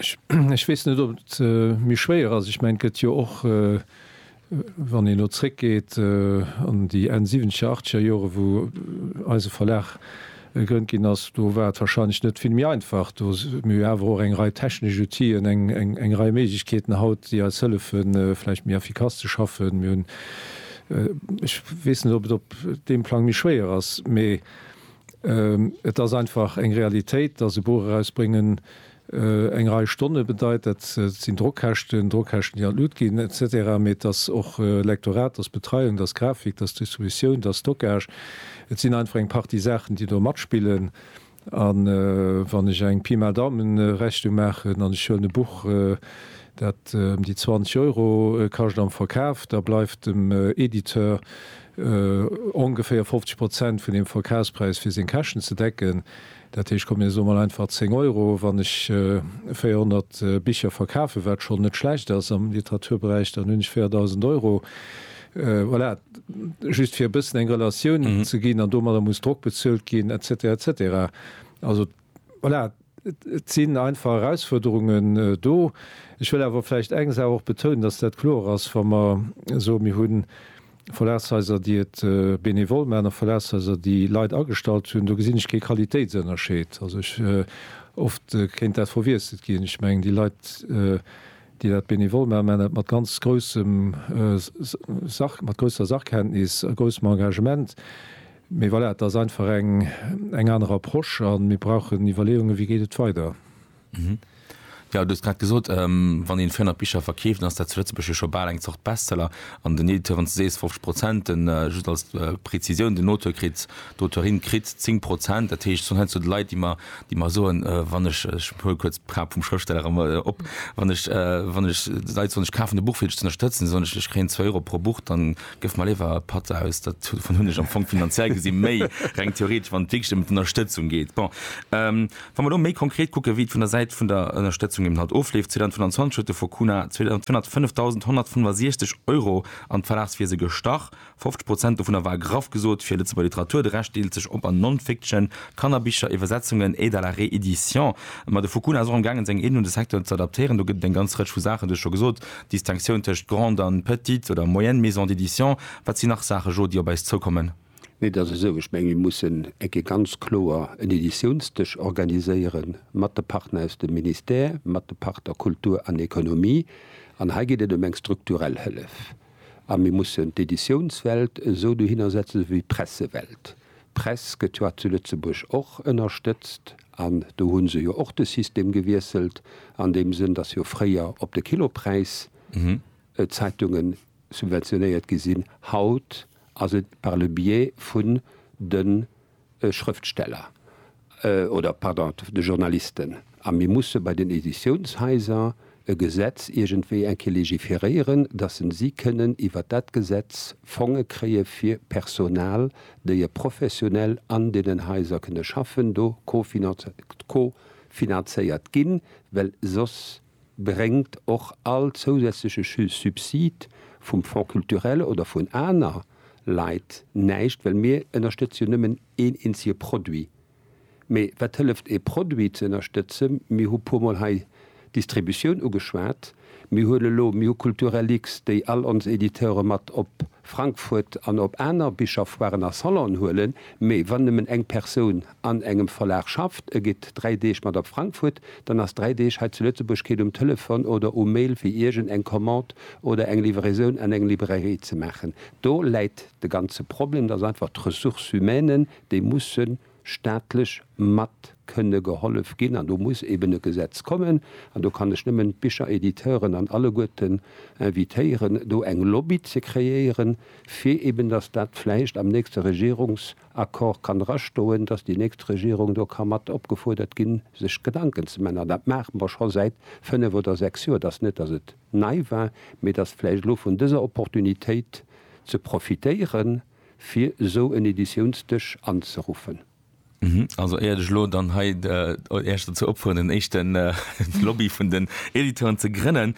Ech weess net, ob et méi schwéier ass. Ech mengen, et gëtt jo och, wann een elo zréckgeet an déi Enn siwwenzeger, achtzeger Jore wou eise Verlag gegrënnt ginn ass, do war et warscheinlech net vill méi einfach. Do hu mir awer och eng Rei technesch Outien, eng Rei Méiglechkeeten haut, déi eis hëllefe vläicht méi effikass ze schaffen. Mir hunn, ech weess net, ob et op deem Plang méi schwéier ass, mee. Et ass einfach eng Realitéit, dass e Buch erausbréngen eng Rei Stonne bedeit. Dat sinn Drockkäschten, Drockkäschten, déi an d'Lut ginn et cetera. Mee et ass och Lektorat, et ass Betreiung, et ass Grafik, et ass Distributioun, et ass Stockage. Et sinn einfach eng Partie Saachen, déi do matspillen. A wann ech eng Pi mal Daumen-Rechnung maachen an ech huelen e Buch, dat ëm déi 20 Euro kascht am Verkaf, da bleift dem Editeur ongeféier 50 Prozent vun dem Verkafspräis fir seng Käschten ze decken. Dat heescht, komm mir soe mol einfach 10 Euro, wann ech 400 Bicher verkafen, wat schonn net schlecht ass am Literaturberäich, dann hunn ech 4.000 Euro. Voilà, just fir e bëssen eng Relatioun ze ginn. An domadder muss Drock bezuelt ginn, et cetera, et cetera. Also. Voilà, et sinn einfach Erausfuerderungen do. Ech wëll awer vläicht eng Saach och betounen, dass dat kloer ass, wa mer soen, mir hu Verlagshaiser, déi et benevol maachen, a Verlagshaiser, déi Leit agestallt hunn, do gesinn ech kee Qualitéitsënnerscheed. Also ech, oft kéint dat verwiesselt ginn. Ech mengen, déi Leit, déi dat benevol maachen, maachen dat mat ganz groussem, mat grousser Sachkenntnis a groussem Engagement. Mee voilà, et ass einfach eng, eng aner Approche a mir brauchen Iwwerleeungen, wéi geet et weider. Jo, du hues grad gesot, wann een 400 Bicher verkeeft, dann ass dat zu Lëtzebuerg jo scho bal eng Zort Bestseller. An den Editeuren, s du sees 50 Prozent, den, just als Prezisioun, den Auteur kritt, d'Auteurin kritt 10 Prozent. Dat heescht, s hunn heiansdo Leit, déi mer, déi mer soen, wann ech, ech huele kuerz d'Crap vum Schrëftsteller erëm op, wann ech, wann ech, Leit soen, ech kafen e Buch fir dech z'ënnerstëtzen, soen ech, ech kréien zwou Euro pro Buch, dann Gëff mer léiwer Patt aus. Dat dovun hunn ech am Fong finanziell gesi méi, reng theoretesch, wann et wierklech ëm d'Ënnerstëtzung geet. Bon, wa mer elo méi konkret kucken, wéi et vun der Säit vun der Ënnerstëtzung eben halt ofleeft, 2025 huet de Focuna 205.165 Euro an d'Verlagswiese gestach. 50 Prozent dovunner war graff gesot fir Lëtzebuerger Literatur, de Rescht deelt sech op an Non-Fiction, Kannerbicher, Iwwersetzungen, Aide à la réédition. Ma de Focuna ass och am gaangen, seng Aiden un de Secteur ze adaptéieren. Do gëtt et eng ganz Rëtsch vu Saachen, du hues scho gesot, Distinctioun tëscht grande an petite oder moyenne maison d'édition, wat sinn nach Saache Jo, déi op eis zoukommen? Nee, et ass esou, ech menge mir mussen eng Kéier ganz kloer en Editiounsdësch organiséiere mat de Partner aus dem Ministère, mat de Partner Kultur an Economie. An hei geet et ëm eng strukturell Hëllef. A mir mussen d'Editiounswelt esou dohinner setzen, esou wéi d'Pressewelt. D'Press gëtt jo hat zu Lëtzebuerg och ënnerstëtzt an do hu se jo och de System gewiesselt an deem Sënn, datt jo fréier op de Kilopräis d'Zeitunge subventionéiert gi sinn. Haut ass et par le biais vun de Schrëftsteller. oder, pardon, de Journalisten, a mir musse bei den Editiounshaiser e Gesetz iergendwéi eng Kéier légiféréieren, dass en si kënnen iwwert dat Gesetz Fonge kréie fir Personal, déi e professionell an deenen Haiser kënne schaffen, do co-finanzéiert ginn, well soss bréngt och all zousätzleche Subsid vum Fonds culturel oder vun aner Leit näischt, well mir ënnerstëtze jo nëmmen een eenzege Produit. Mee wat hëlleft ee Produit ze ënnerstëtzen? Mir hu puer Mol hei d'Distributioun ugeschwat. Mir hunn elo, mir hu Kulturellix, déi all ons Editeure mat op Frankfurt an op aner Bicherfoiren a Salonen huelen, mee wann nëmmen eng Persoun an engem Verlag schafft, e geet dräi Deeg mat op Frankfurt, dann ass dräi Deeg hei zu Lëtzebuerg keet um Telefon oder um Mail fir iergend eng Commande oder eng Livraison an eng Librairie ze maachen. Do läit de ganze Problem, dass einfach d'Ressources humaines, déi musse staatlech mat kënne gehollef ginn an do muss eben e Gesetz kommen. An do kann ech nëmmen d'Bicheréditeuren an alleguerten invitéieren do eng Lobby ze kreéieren, fir eben dass dat vläicht am nächste Regierungs. Accord kann drastoen, dass déi nächst Regierung do ka mat opgefuerdert ginn, sech Gedanken ze man. An dat maache mer scho säit fënnf oder sechs Joer. Et ass net, dass et nei war, mee et ass vläicht elo vun dëser Opportunitéit ze profitéieren, fir esou en Editiounsdësch anzeruffen. Also éiert ech elo dann hei Äech dozou opfueren, en éischten Lobby vun den Editeuren ze grënnen,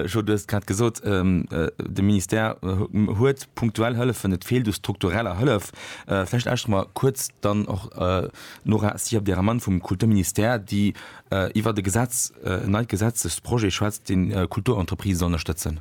Joe, du hues et grad gesot, de Ministère huet, Punktuell Hëllefen, et feelt u struktureller Hëllef. Vläicht lauschteren mer kuerz dann och d'Nora Sierp-Deramann vum Kulturministère, déi iwwert e Gesetz, en neit Gesetzesprojet schwätzt, deen d'Kulturentreprisë soll ënnerstëtzen.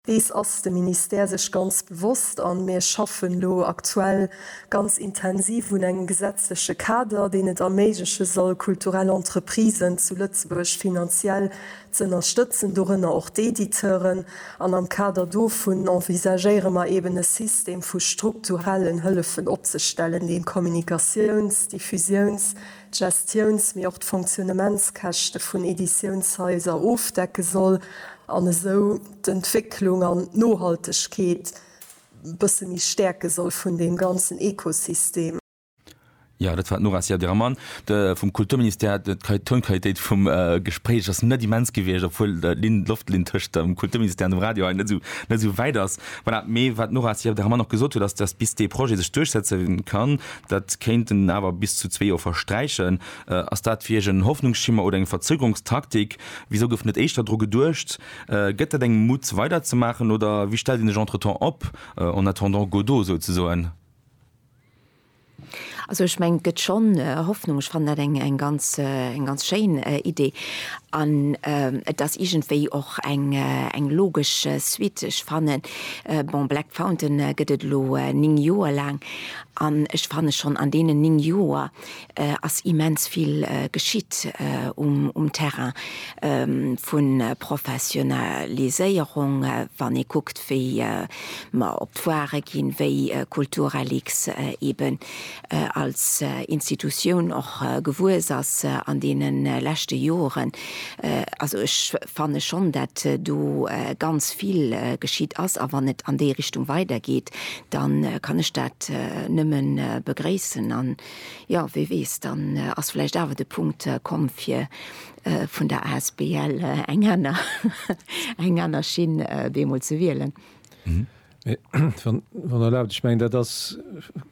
Dees ass de Ministère sech ganz bewosst a mir schaffen elo aktuell ganz intensiv un engem gesetzleche Kader, deen et erméigleche soll, kulturell Entreprisen zu Lëtzebuerg finanziell z'ënnerstëtzen, dorënner och d'Editeuren, an am Kader dovun envisagéiere mer eben e System vu strukturellen Hëllefen opzestellen, deen d'Kommunikatiouns-, d'Diffusiouns-, d'Gestiouns-, mee och d'Fonctionnementskäschte vun Editiounshaiser ofdecke soll an esou d'Entwécklung an d'Nohaltegkeet e bësse méi stäerke soll vun deem ganzen Ekosystem. Jo, dat war d'Nora Siagiramman vum Kulturministère. D'Tonqualitéit vum Gespréich ass net immens gewiescht, obwuel d'Linn, d'Loftlinn tëscht dem Kulturministère an dem Radio hei net esou, net esou wäit ass. Voilà, mee wat d'Nora Siagiramman och gesot huet, ass, dass bis dee Projet sech duerchsetze kann, dat kéinten awer bis zu zwee Joer versträichen. Ass dat fir Iech en Hoffnungsschimmer oder eng Verzögerungstaktik? Wisou gouf net éischter dru geduecht? Gëtt dat engem Mut weiderzemaachen oder wéi stellt een sech entretemps op, en attendant Godot souzesoen? Also ech mengen, et gëtt schonn Hoffnung. Ech fannen dat eng ganz schéin Idee an et ass iergendwéi och eng logesch Suite. Ech fannen, bon, Black Fountain gëtt et elo néng Joer laang an ech fanne schonn an deenen néng Joer ass immens vill geschitt um Terrain vu Professionaliséierung, wann ee kuckt wéi mer op d'Foire ginn, wéi Kulturrlix eben als Institutioun och gewuess ass an deene leschte Joren. Also ech fanne schonn, dat do ganz vill geschitt ass a wann et an déi Richtung weidergeet, da kann ech dat nëmme begréissen. Jo, wie weess, dann ass vläicht awer de Punkt komm, fir vun der asbl eng aner, eng aner Schinn bemol ze wielen. Mee, wann, wann erlaabt, ech mengen, dat ass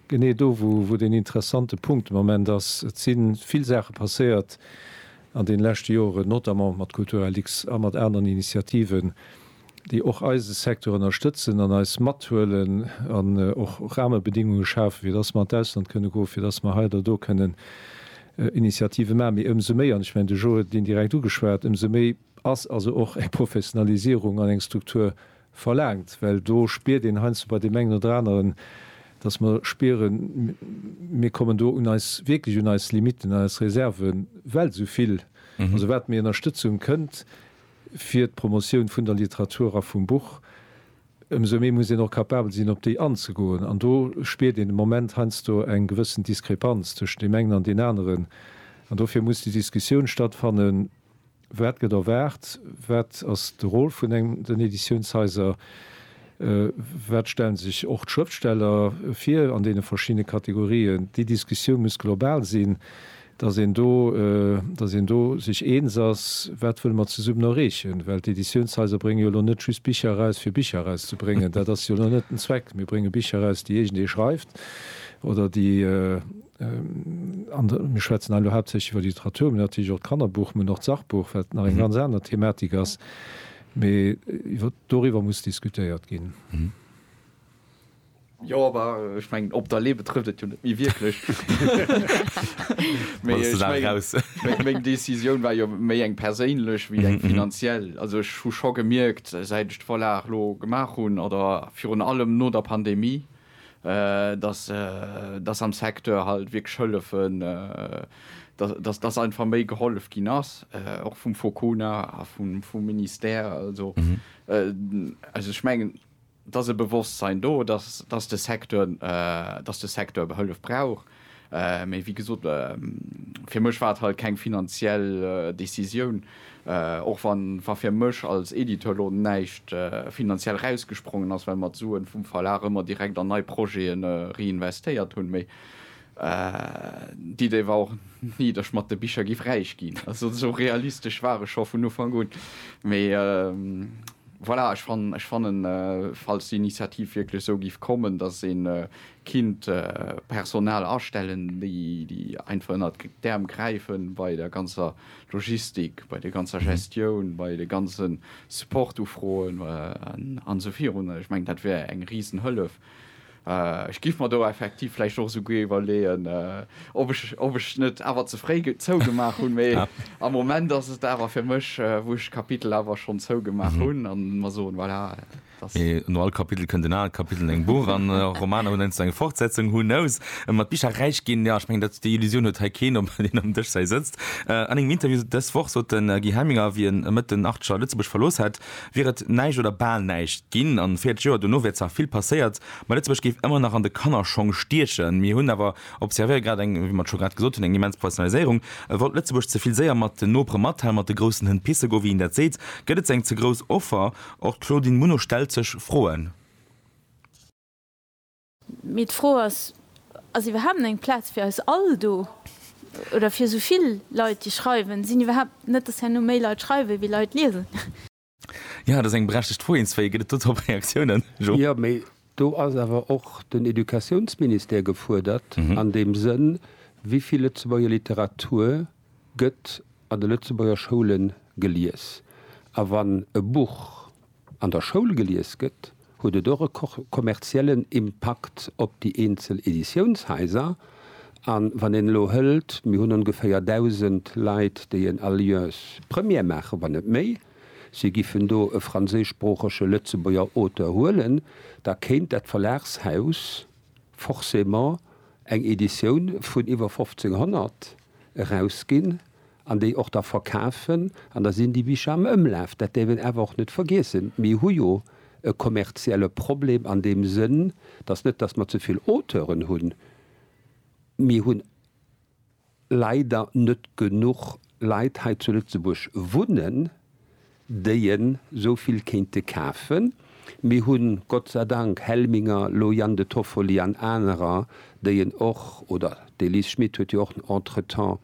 genee do, wou, wou deen interessante Punkt de Moment ass. Et si vill Saache passéiert an deene leschte Joren, notamment mat Kulturel X a mat aneren Initiativen, déi och eise Secteur ënnerstëtzen an eis mathuelen an och Rahmebedingunge schafen, fir dass mer an d'Ausland kënne goen, fir dass mer hei oder do kënnen Initiative maachen. Mee ëmsou méi, an ech mengen, de Joe huet et indirekt ugeschwat, ëmsou méi ass also och eng Professionalisierung an eng Struktur verlaangt, well do spiert een heiansdo bei deem engen oder aneren, dass mer spieren, mir kommen do un eis, wierklech un eis Limitten, un eis Reserven, well esou vill, also wat méi Ënnerstëtzung kënnt, fir d'Promotioun vun der Literatur a vum Buch, ëmsou méi muss een och capabel sinn, op déi anzegoen. An do spiert een de Moment heiansdo eng gewëssen Diskrepanz tëschent deem engen an deen aneren. An dofir muss déi Diskussioun stattfannen, Wat gëtt erwaart? Wat ass de Rôle vun den Editiounshaiser? Wat stellen sech och d'Schrëftsteller vir an deene verschiddene Kategorien? Déi Diskussioun muss global sinn, datt een do, datt een do sech eens ass, wat wëlle mer zesummen erreechen. Well d'Editiounshaiser brénge jo elo net just Bicher eraus, fir Bicher erauszebréngen. Dat ass jo elo net den Zweck. Mir brénge Bicher eraus, déi iergendee schreift oder déi an de, mir schwätzen hei elo haaptsächlech iwwer d'Literatur, mä natierlech och d'Kannerbuch, mä och d'Sachbuch, wat nach eng ganz aner Thematik ass, Mee doriwwer muss diskutéiert ginn. Jo, awer ech mengen, op der Lee betrëfft et jo net méi wierklech. Meng Decisioun war jo méi eng perséinlech wéi eng finanziell. Also ech hu scho gemierkt, säit ech d'Vorlag elo gemaach hunn, oder virun allem no der Pandemie, dass dass am Secteur halt wierklech hëllefen, dass dass einfach méi gehollef ginn ass, och vum Focuna a vum vum Ministère. Also also ech mengen, et ass e Bewosstsein do, dass dass de Secteur dass de Secteur Hëllef brauch. Mee wéi gesot, fir mech war et halt keng finanziell Décisioun, och wa fir mech als Editeur elo näischt finanziell rausgesprongen ass, well mer d'Suen vum Verlag ëmmer direkt an nei Projete reinvestéiert hunn. Mee d'Idee war och ni, dass ech mat de Bicher giff räich ginn. Also esou realistesch war ech scho vun Ufank un. Mee voilà, ech fannen, falls d'Initiativ wierklech esou giff kommen, dass een Kinnt Personal astellen, déi déi einfach ënnert d'Äerm gräifen bei der ganzer Logistik, bei der ganzer Gestioun, bei de ganze Support-Ufroen an esou virun. Ech mengen, dat wär eng risen Hëllef. Ech giff mer do effektiv vläicht och esouguer iwwerleeën, ob ech ob ech et net awer ze fréi zougemaach hunn. Mee am Moment ass et awer fir mech, wou ech d'Kapitel awer schonn zougemaach hunn an mer soen, voilà. Mee no all Kapitel kënnt en anert Kapitel, eng Buch an Romaner hunn heiansdo eng Fortsetzung, who knows? Mat Bicher räich ginn, jo, ech mengen, dat déi Illusioun huet hei keen, ob een am Dëschzäi sëtzt. An engem Interview dës Woch sot de Guy Helminger, wéi en Mëtt den Archer Lëtzebuerg verlooss hätt, wier et näischt oder bal näischt ginn an 40 Joer dono wier zwar vill passéiert, ma Lëtzebuerg géif ëmmer nach an de Kannerschong stiechen. Mir hunn awer, observéiere grad eng, wéi mer et scho grad gesot hunn, eng immens Professionaliséierung. Wollt Lëtzebuerg ze vill séier mat den Nopere mathalen, mat de groussen Hënn pisse goen, wéi een dat seet? Gëtt et ze eng ze grouss Offer Och d'Claudine Muno stellt sech Froen. Mee d'Fro ass, Ass iwwerhaapt eng Plaz fir eis all do? Oder fir esou vill Leit, déi schreiwen? Sinn iwwerhaapt net dass herno méi Leit schreiwen, wéi Leit liesen? Jo, dat ass eng berechtegt Fro. Eens wéi, gëtt et dodrop Reaktiounen? Jo. Jo, mee do ass awer och den Educatiounsministère gefuerdert an deem Sënn, wéi vill Lëtzebuerger Literatur gëtt an de Lëtzebuerger Schoule gelies. A wann e Buch an der Schoul gelies gëtt, huet et och e kommerziellen Impakt op déi eenzel Editiounshaiser. A wann een elo hëlt, mir hunn ongeféier 1.000 Leit, déi en Alliance Première maachen, wann net méi, si giffen do e franséischsproochege Lëtzebuerger Auteur huelen, da kéint dat Verlagshaus, forcément eng Editioun vun iwwer 1500 erausginn an déi och da verkafen an da sinn déi Bicher am Ëmlaf. Dat däerf een awer och net vergiessen. Mir hu jo e kommerzielle Problem an deem Sënn, dass net dass mer ze vill Auteuren hunn, mir hunn. leider net genuch Leit hei zu Lëtzebuerg wunnen, déi en esou vill kéinte kafen. Mir hunn Gott sei Dank Helminger, Loyang de Toffoli an anerer, déi en och, oder d'Elise Schmit huet jo och entretemps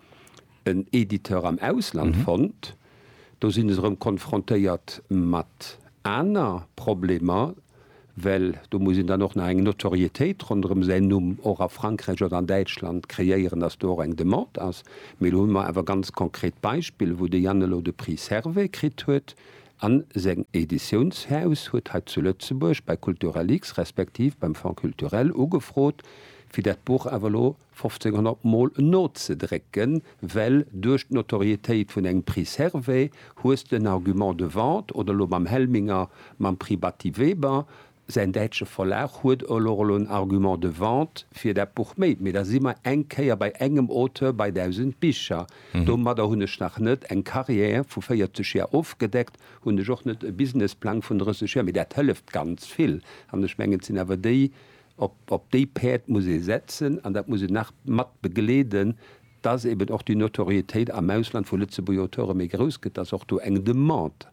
en Editeur am Ausland fonnt. Do sinn se erëm konfrontéiert mat aner Problemer. well do muss een dann och nach eng Notoriétéit ronderëm säin Numm och a Frankräich oder an Däitschland kreéieren, dass do och eng Demande ass. Mee elo hu mer awer ganz konkret Beispiller, wou de Jan elo de Prix Servais kritt huet a seng Editiounshaus huet hei zu Lëtzebuerg bei Culturalix respektiv beim Fonds culturel ugefrot, fir dat Buch awer elo 1500 mol nozedrécken, well duerch d'Notorietéit vun engem Prix Servais hues de en Argument de vente, oder elo mam Helminger mam Prix Batty Weber, säin däitsche Verlag huet elo elo en Argument de vente fir dat Buch méi. Mee da si mer eng Kéier bei engem Auteur bei 1000 Bicher. Domadder hunn ech nach net eng Carrière vu 40 Jar ofgedeckt, hunn ech och net e Businessplang vun 30 Jar, mee dat hëlleft ganz vill. An ech mengen, et sinn awer déi Op déi Päerd muss ee setzen an dat muss een nach mat begleeden, dass eben och déi Notoriétéit am Ausland vu Lëtzebuerger Auteure méi grouss gëtt, dass och do eng Demande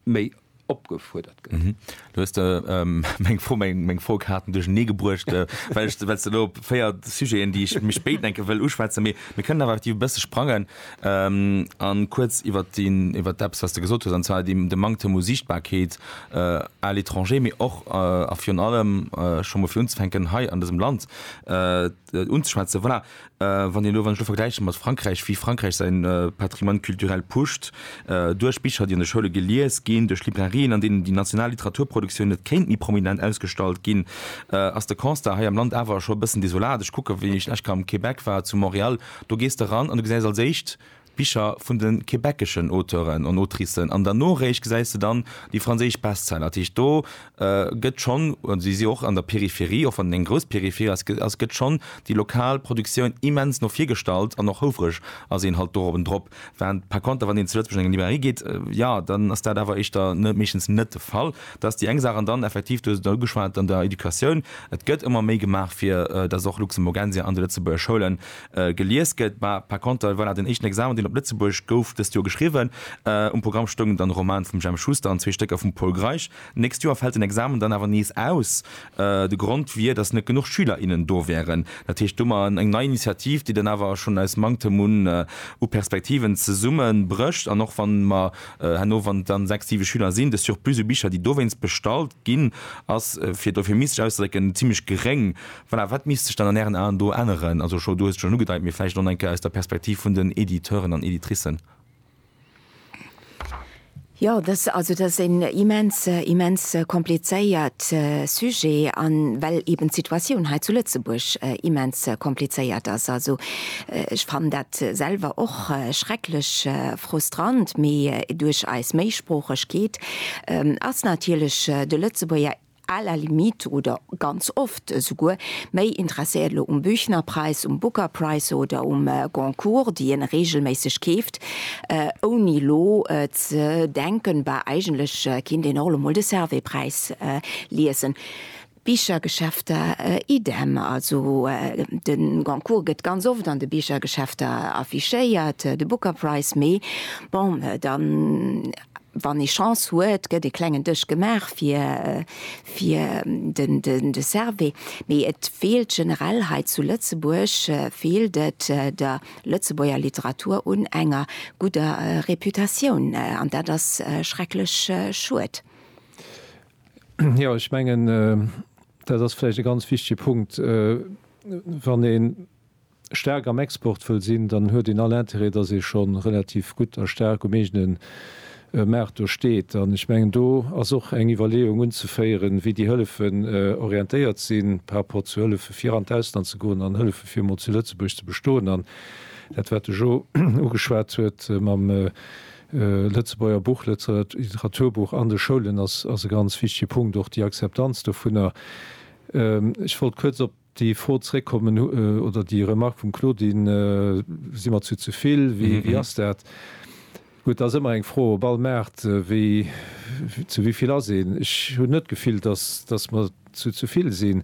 méi opgefuerdert gëtt. Do hues de meng Fro, meng Frokaarten duerchernee gebruecht, well s de elo op véier Sujeten, déi ech méi spéit, enke, wëll uschwätzen. Mee mir kënnen awer effektiv e bësse sprangen. A kuerz iwwert deen, iwwert eppes, wat s de gesot hues, an zwar deen, de Manktem u Siichtbarkeet à l'étranger, mee och a virun allem, scho mol fir unzefänken, hei an dësem Land unzeschwätzen. Voilà, wann een elo, wann ech elo vergläiche mat Frankräich, wéi Frankräich säin Patrimoine culturel pusht, duerch Bicher, déi an de Schoule gelies ginn, duerch Librairien, an deenen déi national Literaturproduktioun net kéint méi prominent ausgestallt ginn, ass de Constat hei am Land awer scho e bëssen desolat. Ech kucke wéi ech lech ka am Québec war, zu Montréal, Do gees de ran an du gesäis als éischt d'Bicher vun de quebeceschen Auteuren an Autricen an derno réischt gesäis de dann déi franséisch Bestseller. Dat heescht, do gëtt schonn, si si och an der Peripherie, och wann et eng grouss Peripherie ass, gëtt schonn déi lokal Produktioun immens no vir gestallt an och houfereg ass een halt dorobendrop. Während par konter wann een zu Lëtzebuerg an eng Librairie geet, jo, dann ass dat awer éischter net, meeschtens net de Fall. Dat ass déi eng Saach. An dann effektiv, du hues et och ugeschwat, an der Educatioun, et gëtt ëmmer méi gemaach fir datt och Luxemburgensia an de Lëtzebuerger Schoule gelies gëtt. Mä par konter, voilà, den éischten Examen deen op Lëtzebuerg gouf dëst Joer geschriwwen, um Programm stoungen dann e Roman vum Jemp Schuster an zwee Stécker vum Pol Greisch. D'nächst Joer fält den Examen dann awer nees aus. De Grond wier, datt net genuch Schüler, innen do wären. Dat heescht domat eng nei Initiativ, déi dann awer schonn aus Manktem un u Perspektiven zesumme brécht. An och wann mer herno, wann et dann sechs, siwe Schüler sinn, de Surplus u Bicher, déi dowéinst bestallt ginn, ass, fir et euphemistesch auszedrécken, zimmlech geréng. Voilà, wat misst sech dann an Ären Aen do änneren? Also, Scho, du hues et schonn ugedeit, mee vläicht och nach eng Kéier aus der Perspektiv vun den Editeuren an Editricen. Jo, dass, also dass en immens, immens komplizéiert Sujet an well eben d'Situatioun hei zu Lëtzebuerg immens komplizéiert ass. Also ech fannen dat selwer och schrecklech frustrant, mee duerch eis Méisproochegkeet ass natierlech de Lëtzebuerger À la limite, oder ganz oft esouguer, méi interesséiert elo um Büchnerpreis, um Booker Price oder um Goncourt, déi een reegelméisseg keeft, ouni elo ze denken, bah, eigentlech kinnt een och elo mol de Servais-Präis liesen. Bichergeschäfter idem, also de Goncourt gëtt ganz oft an de Bichergeschäfter affichéiert, de Booker Price méi. Bon, dann Wann ee Chance huet, gëtt ee klengen Dësch gemaach fir de Servais. Mee et feelt generell hei zu Lëtzebuerg feelt et der Lëtzebuerger Literatur un enger gudder Reputatioun. An dat ass schrecklech schued. Jo, ech mengen, dat ass vläicht e ganz wichtege Punkt. Wann ee staark am Export wëll sinn, dann huet een all Intérêt, dass ee scho relativ gutt a staark um eegene Maart do steet. An ech mengen, do ass och eng Iwwerleeung unzeféieren, wéi déi Hëllefen orientéiert sinn par rapport zu Hëllefe fir an d'Ausland ze goen an Hëllefe fir emol zu Lëtzebuerg ze bestoen. An dat, wat de Jo ugeschwat huet mam Lëtzebuerger Buch, Literaturbuch an de Schoulen, ass e ganz wichtege Punkt, och déi Akzeptanz dovunner. Ech wollt kuerz op. Déi Fro zréckkommen, oder déi Remark vum Claudine, si mer zu ze vill, wéi ass dat? Gutt, dat ass ëmmer eng Fro op all Maart, wéi, zu wéi vill ass een? Ech hunn net d'Gefill, dass, dass mer zu ze vill sinn.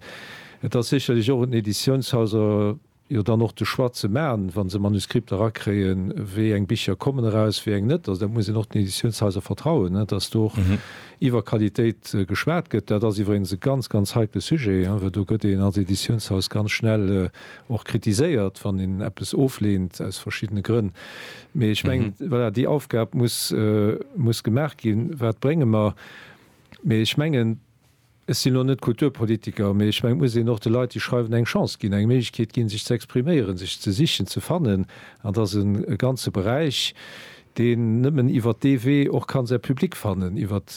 Et ass sécherlech och un den Editiounshaiser jo dann och de Choix ze maachen, wa se Manuskripter erakréien, wéi eng Bicher kommen eraus, wéi eng net. Also dat muss een och den Editiounshaiser vertrauen, dass do och Iwwer Qualitéit geschwat gëtt, dat ass iwwregens e ganz, ganz heikle Sujet, well do gëtt een als Editiounshaus ganz schnell och kritiséiert, wann een eppes ofleent aus verschiddene Grënn. Mee ech mengen, voilà, déi Aufgab muss, muss gemaach ginn, Wat brénge mer? Mee ech mengen, ech sinn elo net Kulturpolitiker, mee ech mengen, et muss een och de Leit, déi schreiwen, eng Chance ginn, eng Méiglechkeet ginn, sech ze expriméieren, sech ze sichen, ze fannen. An dat ass e ganze Beräich, deen nëmmen iwwer dee Wee och ka säi Public fannen, iwwer.